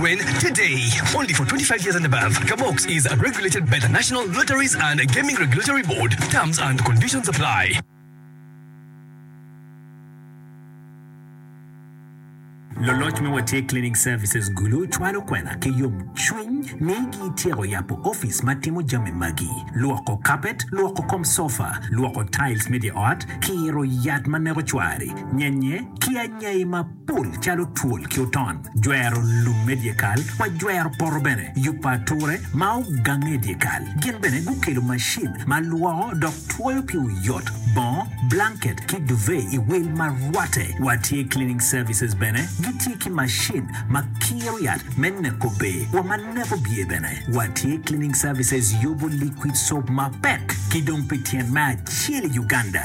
When today, only for 25 years and above, Kabox is regulated by the National Lotteries and Gaming Regulatory Board, terms and conditions apply. Luloc me Watye Cleaning Services Gulu cwalo kwena ki yomcwiny ni gityeko yabo opic ma timo jami magi, lwoko kapet, lwoko kom sofa, lwoko tiles me dye ot, kiro yat ma neko cwari, nyenye, ki anyai ma. pul calo twol ki oton, jwero lum me dyekal wa jwero poto bene, yubo ature ma ogange i dyekal. Gin bene gukelo macin ma lwoko dok twoyo ki oyot bongo, blanket ki duvet i wil ma rwatte wa tye cleaning services bene gitye ki macin ma kiro yat me neko be wa ma neko bye bene wa tye cleaning services yubo liquid soap mapek ki dong pi tyen me acel i Uganda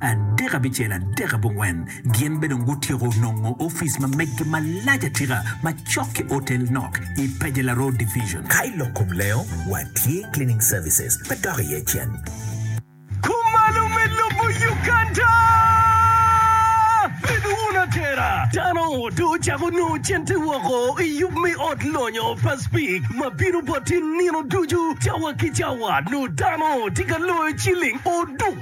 Adek abicel, adek abongwen, gin be dong gutyeko nongo office ma meggi malac atika ma cok ki otel nok i Pajela Road Division. Ka i lok kom lengo, watye Cleaning Services ma dok iye cen. Kumalo me lobo Uganda! Bed wun atera! Dano odo ocako nongo cente woko i yub me ot lonyo pa Speke ma bino bot i nino ducu, cawa ki cawa, nongo dano tye ka loyo ciling oduk.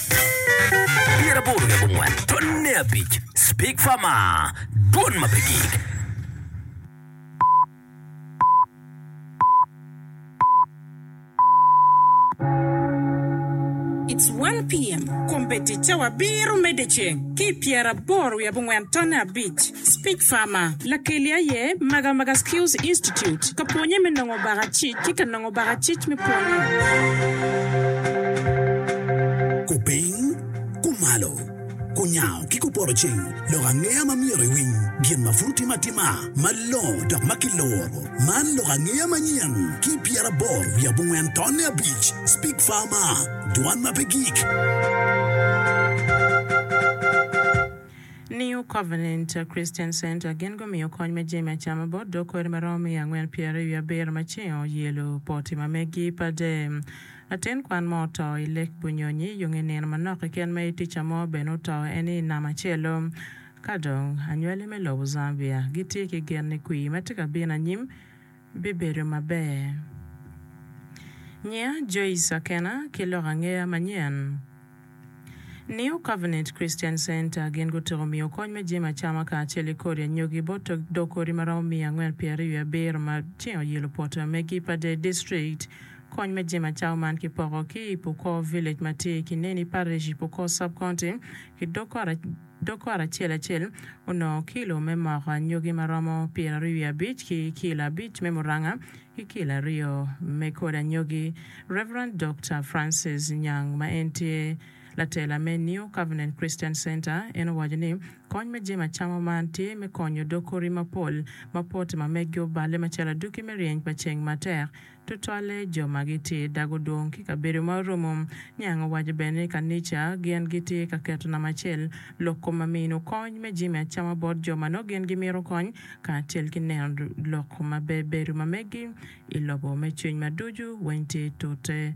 Pyera aboro ki abongwen twon ne abic Speak Fama Dwon ma pe gik It's one PM, Kombeddi cawa abiro medde ceng ki i pyera aboro wiye abongwen twon ne abic. Speech Farmer, Lakeli aye Magamaga Skills Institute ka pwonye me nongo baka cic ki ka nongo baka cic me pwonye. Kupiny, kumalo, kunyango ki kupoto cing lok angeya ma myero iwiny gin ma pud otim atima malongo dok ma kiluro. Man lok angeya manyen ki pyeraboro wiye abongwen tonne abic. Speech Farmer, Dwan ma pe gik. New Covenant Christian Center gin gumiyo kony me jami acama bot dog kweri ma romo miya angwen pyeraryo wiye abiro ma cingo yelo poti ma megi pa dee. Latin kwan mo oto i lek bunyonyi yung i nino manok keken ma itica mo bene oto eni i nama acelo. Kadong anywali me lobo Zambia gitye ki gen ni kwir ma tye ka bino anyim, bibedo maber. Nyinga Joyce Akena ki lok angeya manyen. New Covenant Christian Center gin gutyeko miyo kony me jami acama kacel ki kodi anyogi bot dog kodi ma romo miya angwen pyeraryo wiye abiro ma tye oyilo pwoto me Gipadey District. Kony me jami acama man kipoko ki i Pukor Village ma tye i Kineni Parish i Pukor Sub-County ki dog kot Dokot acel acel onongo kilo me moko anyogi ma romo pyeraryo wiye abic ki kilo abic me muranga ki kilo aryo me kodi anyogi. Rev. Dokta Francis Nyang ma en tye latela me New Covenant Christian Center en owaco ni kony me jami acama man tye me konyo dog kori mapol ma pote ma meggi oballe macalo aduki me ryeny pa ceng matek Tutwalle jo ma gitye i dag odong ki kabedo ma oromo. Niang owaco bene ni kanica gin gitye ka keto namba acel lok kom ma mino kony me jami acama bot jo ma nongo gin gimito kony kacel ki neno lok ma bebedo ma megi i lobo me cwiny ma ducu weng tye tute.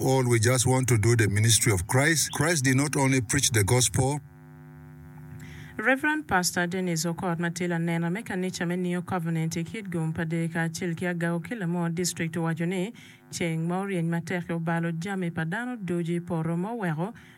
All we just want to do the ministry of Christ, Christ did not only preach the gospel, Rev. Pastor Dennis Okot ma tye lanena me kanica me New Covenant i kit gum pa Deeka acel ki agago ki Lamor District owaco ni, Ceng ma oryeny matek-ki obalo jami pa dano ducu i poto ma oweko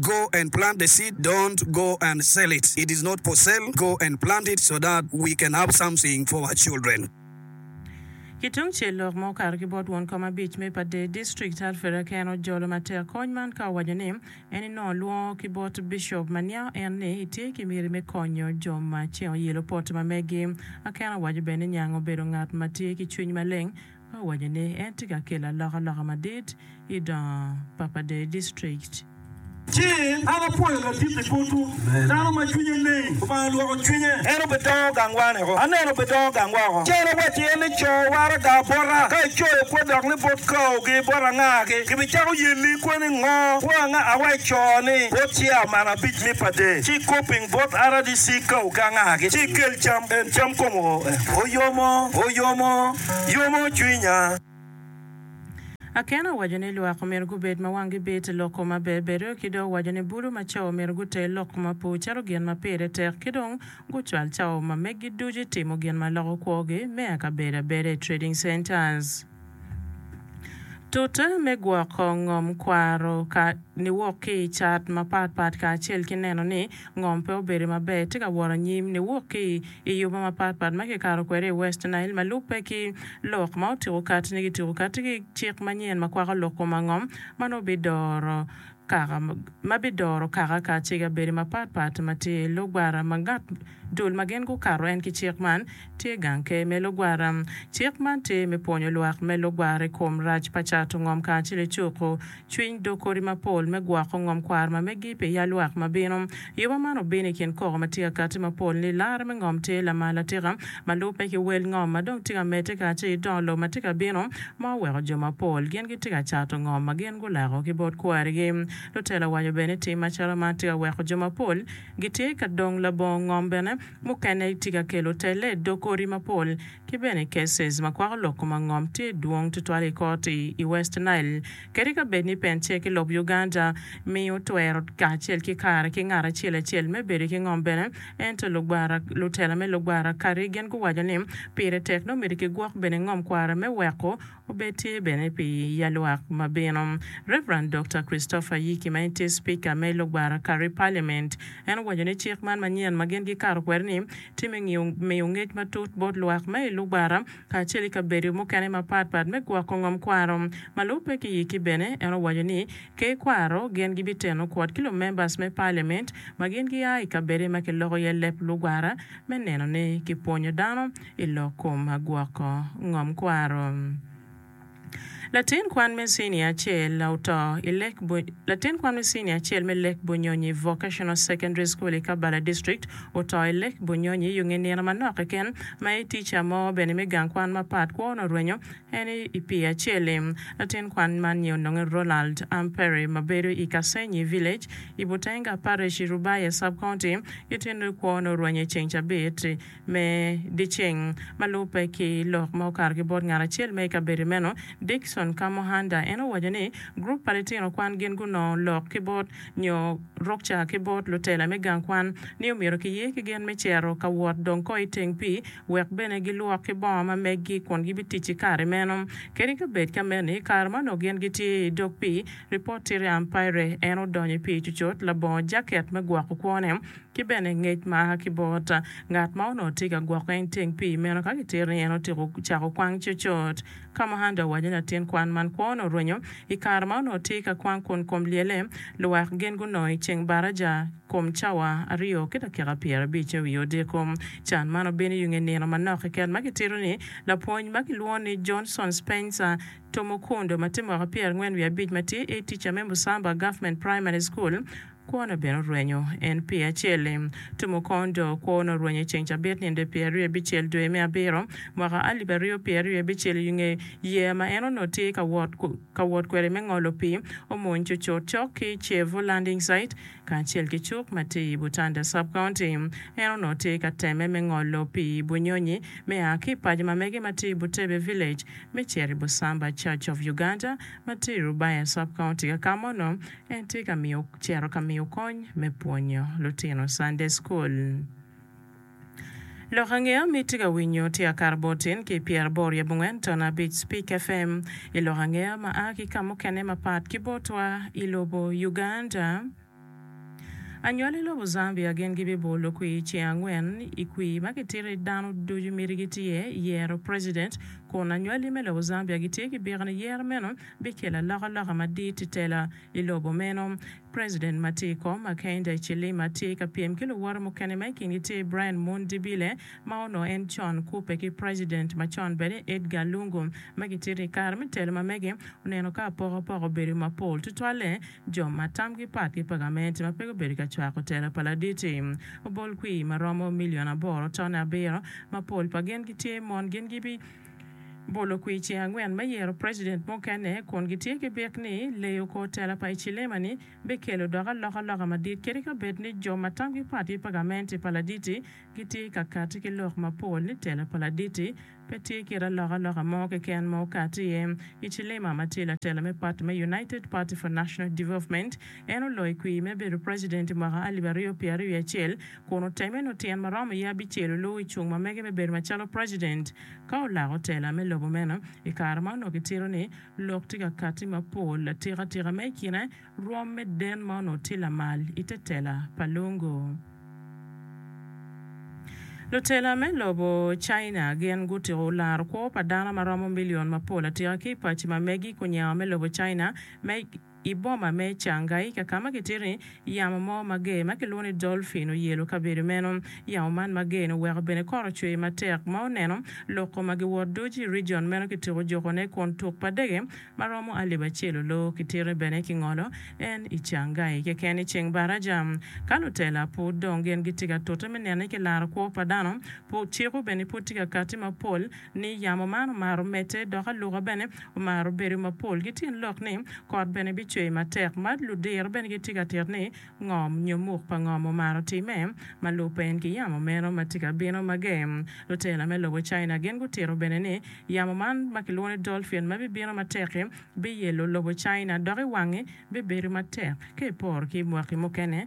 Go and plant the seed don't go and sell it it is not for sale go and plant it so that we can have something for our children. Ki tung cel lok ma okato ki bot won kom abic me Padee District, Alfred Akena ojolo matek kony man ka owaco ni en inongo lwongo ki bot Bishop ma niango en ni itye ki miti me konyo jo ma ceng oyelo pote ma megi. Akena owaco bene ni niango obedo ngat ma tye ki cwiny maleng me waco ni en tye ka kelo alokaloka madit i dongo pa pa Deyo District. Ci an apwoyo ladit i botwu, dano ma cwinye leng, Lubanga olwoko cwinye. En obidongo gangwa niko, aneno obidongo gangwa oko. Ci an awacci en ni, 'Co waraga bota. Ka icoyo kwo dok ni bot kaogi, bot angagi, gibicako yelli i kwo ni, 'Ngo kwo anga awa ico ni? Bot ciao man abic ni pa Deyo, ci ikoping bot RDC kaogi angagi, ci ikel cam. En cam kome oyo mo, oyo mo. yomo cwinya. Akena owaco ni lwak omyero gubed ma wanggi bit lok kom ma bebedo, ki dong owaco ni bulu ma cawa omyero guter lok kom ma pe ocito gin ma pire tek ki dong gucwal cawa ma meggi ducu i timo gin ma loko kwogi me akabedo abeda i Trading Centers. Tute me gwoko ngom kwaro ka niwok ki i cat mapat pat kacel ki neno ni Ngom pe obedo maber, tye ka wot anyim niwok ki i yobe mapat pat ma kikato kwede i West Nile ma lubbe ki lok ma otiko kati ni gitiko kati ki cik manyen ma kwako lok kom angom ma nongo bidoro kaka ma bidoro kaka kacega bedo mapat pat ma tye i lugwara ma ngat dul ma gin gukato en ki cik man Tye gang ke me lugwara. Cik man tye me pwonyo lwak me lugwara i kom rac pa cato ngom kacel i cuko cwiny dog kodi mapol me gwoko ngom kwaro ma megi pi ya lwak ma bino. Yuba man obino i kin koko ma tye ka kati mapol ni Lara me ngom tye lamal atika ma lubbe ki wel ngom ma dong tye ka medde kacel ki dongo lobo ma tye ka bino ma oweko jo mapol gin gitye ka cato ngom ma gin gulako ki bot kwarigi. Lutela owaco bene ni tim macalo man tye ka weko jo mapol gitye ka dong labongo ngom bene. Mukene itye ka kelo telle i dog odi mapol ki bene i cases ma kwako lok koma ngom tye dwong tutwal i kot i i West Nile kadi ka bed ni pence ki lob Uganda miyo twero kacel ki kare ki ngat acel acel me bedo ki ngom bene ento lugwara lutela me lugwara kadi gin guwaco ni pire tek nongo myero ki gwok bene ngom kwara me weko Obed tye bene pi yalwak ma bino. Rev. Dokta Christopher Yiki ma en tye Cipika me lugwara kare Paliament, en owaco ni cik man manyen ma gin gikato kwede ni tye me ngiyo miyo ngec matut bot lwak ma i lugwara kacel i kabedo mukene mapat pat me gwoko ngom kwaro. Malubbe ki Yiki bene en owaco ni ker kwaro gen gibiteno kwot ki lumembers me Paliament ma gin gia i kabede ma kiloko iye leb lugwara me neno ni kipwonyo dano i lok kom agwoko ngom kwaro. Latin kwan me cinia acel oto i lek Latin kwan me cinia acel me Lek Bunyonyi Vocational Secondary School i Kabbala District oto i Lek Bunyonyi i onge nino manok keken ma i tica mo bene me gang kwan mapat kwo onongo orwenyo en i pii acel i. Latin kwan man nye ononge Ronald Ampere ma bedo i Kasenyi Village i Butenga Parish i Rubaya Sub County. Gitino kwo onongo orwenye ceng cabit. Me dyeceng ma lubbe ki lok ma okato ki bot ngat acel ma i kabedo meno, Dickson Kamuhanda, en owaco ni gurup pa litino kwan gin gunongo lok ki bot nyo rukca ki bot lutela me gang kwan ni omyero kiye ki gen me cero ka wot dong ko i teng pii wek bene gilwok ki bongo ma meggi kun gibitic i kare meno. Kadi ka bed ka meni, i kare ma onongo gin gitye i dog pii, Reporteri Ampire, en odonyo i pii cucut labongo jaket me gwoko kwone. ki bene ngec ma a ki bot ngat ma onongo tye ka gwokke i teng pii meno. Ka gitero ni en otyeko cako kwang cocot, ka ma Handa owaco ni latin kwan man kwone orwenyo, i kare ma onongo tye ka kwang kun kom lyele, luwak gin gunongo i ceng baraja kom cawa aryo ki dakika pyerabic me wiye odiko. Can man obino yung i nino manok keken ma gitito ni lapwony ma kilwongo ni Johnson Spencer Tumukunde ma tye mwaka pyerangwen wiye abic ma tye A-teacher me Musamba Government Primary School, Kwone bene orwenyo en pye acel-li. Tumo kong do kwone orwenyo i ceng cabit ninde pye aryo bicel dwe me abiro mwaka alip aryo pye aryo bicel i nge yeya ma en onongo tye ka wot ka wot kwede me ngolo pii omony cucut cok ki Chevu Landing Site kacel ki cuk ma tye i Butanda Sub-County. En onongo tye ka temme me ngolo pii i Bunyonyi me a ki i paco ma mege ma tye i Butebe Village me cito i Busamba Church of Uganda ma tye i Rubaya Sub-County ka kama onongo En tye ka miyo cito ka miyo kony me pwonyo lutino Cande cukul. Lok ange omi tye ka winyo tye akato bor tin ki pyera bor yab ongwen tono abic Speak FM i lok ange ma a ki kamukene mapat ki botwa i lobo Uganda. Anywali i lobo Zambia gin gi bi bolo kwi i ceng angwen i kwi ma ki tito i dano ducu miti gi tye yero president kun anywali me lobo Zambia gi tye ki biko ni yero meno bikelo alokaloka madit i tela i lobo meno. President ma tye i kom, Hakainde Hichilema, tye ka pyem ki luwote mukene ma i kingi tye Brian Mundibile ma onongo en con kubbe ki president macon bene Edgar Lungu ma gitye ni i kare me telo ma mege oneno ka apokapoko obedo mapol tutwalle jo ma tamgi pat ki pa gamente ma pe gubedo ka cwako telo pa Laditi obol kwir ma romo million aboro tone abiro ma pol pa gin gitye mon gin gibi Bolo kwir ceng angwen me yero president mukene kun gitye ki byek ni leyo kor tela pa Hichilema ni bikelo dok alokaloka madit kadi ka bed ni jo ma tamgi pat ki pa gamente pa Laditi gitye ka kati ki lok mapol ni tela pa Laditi pe tye kit alokaloka mo keken ma okati iye. Hichilema ma tye latela me pati me United Party for National Development en oloyo kwir me bedo president i mwaka alip aryo pyer aryo wiye acel kun oteme nyo tyen ma romo iye abicel oluwu i cung ma mege me bedo macalo president ka olako tela me lobo meno. I kare ma onongo kitito ni lok tye ka katti mapol atika tika ma i kine rwom me den ma onongo tye lamal i te tela pa Lungu. Lutela me lobo China gin gutyeko laro kwo pa dano ma romo million mapol atika ki i paci ma megi kunyengo me lobo China me I boma me Changaika ka ma kitito ni, yamo mo mager ma kilwongo ni dolphin oyelo kabedo meno. Yamo man mager-ni oweko bene kot ocwer matek ma oneno loko ma giwot ducu i rijion meno ki tuko jokone kun tuk pa dege ma romo alip acel olor. Kitito ni bene kingolo en i Changai keken i ceng baraja. Ka lutela pud dong gin gitye ka tute me nene ki laro kwo pa dano, cik-ku bene pud tye ka katti mapol. ni yamo man omaro medde dok aluka bene omaro bedo mapol. Gitin lok ni, kot bene bicwe matek. Ma ludiro bene gitye ka tito ni, Ngom nyo muk pa ngom omaro timme ma lubbe en ki yamo meno ma tye ka bino mage? Lutela me lobo China gin gutito bene ni, yamo man ma kilwongo ni dolphin ma bibino matek-ki biyelo lobo China dok i wangi bibedo matek ka iporo ki i mwaki mukene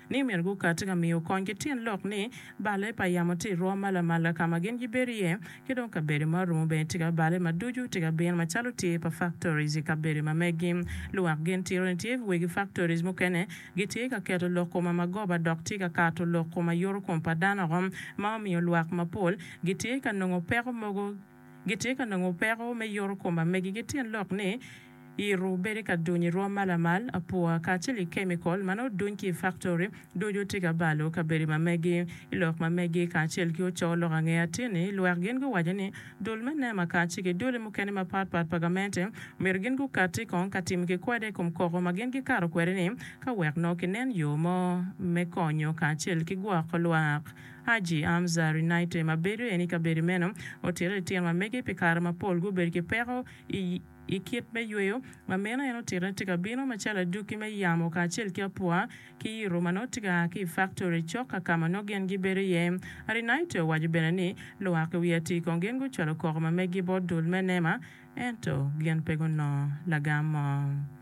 ni myero gukat ka miyo kony ki tyen lok ni balle pa yamo tye irwo ma lamal ka ma gin gibedo iye, ki dong kabedo ma orumo bene tye ka balle ma ducu tye ka bino macalo tye pa factories i kabedo ma megi. Lwak gin tiro ni tye wegi factories mukene gitye ka keto lok koma ma goba dok tye ka kato lok koma yuru kom pa dano oko ma omiyo lwak mapol gitye ka nongo peko mogo gitye ka nongo peko me yoto kom amegigi tyen lok ni yiro, bedo ka duny i rwom ma lamal, apua, kacel ki kemikol ma nongo oduny ki i faktori, ducu tye ka balo kabedo ma megi. I lok ma megi kacel ki oco lok ange atir ni lwak gin guwaco ni dul me NEMA kacel ki duli mukene mapat pat pa gamente omyero gin gukatti kong ka timo kikwade i kom koko ma gin gikato kwede ni ka wek nongo kinen yo mo me konyo kacel ki gwoko lwak Haji Amza Rinaite ma bedo en i kabedo meno otito litino ma mege pi kare mapol gubedo ki peko i kit me yweyo ma meno en otito ni tye ka bino macalo adwoki me yamo kacel ki apwa ki yito ma nongo tye ka a ki i faktori cok ka ka ma nongo gin gibedo iye. Rinaite owaco bene ni luwak i wi atir kong gin gucwalo koko ma megi bot dul me nema ento gin pe gunongo lagam mo.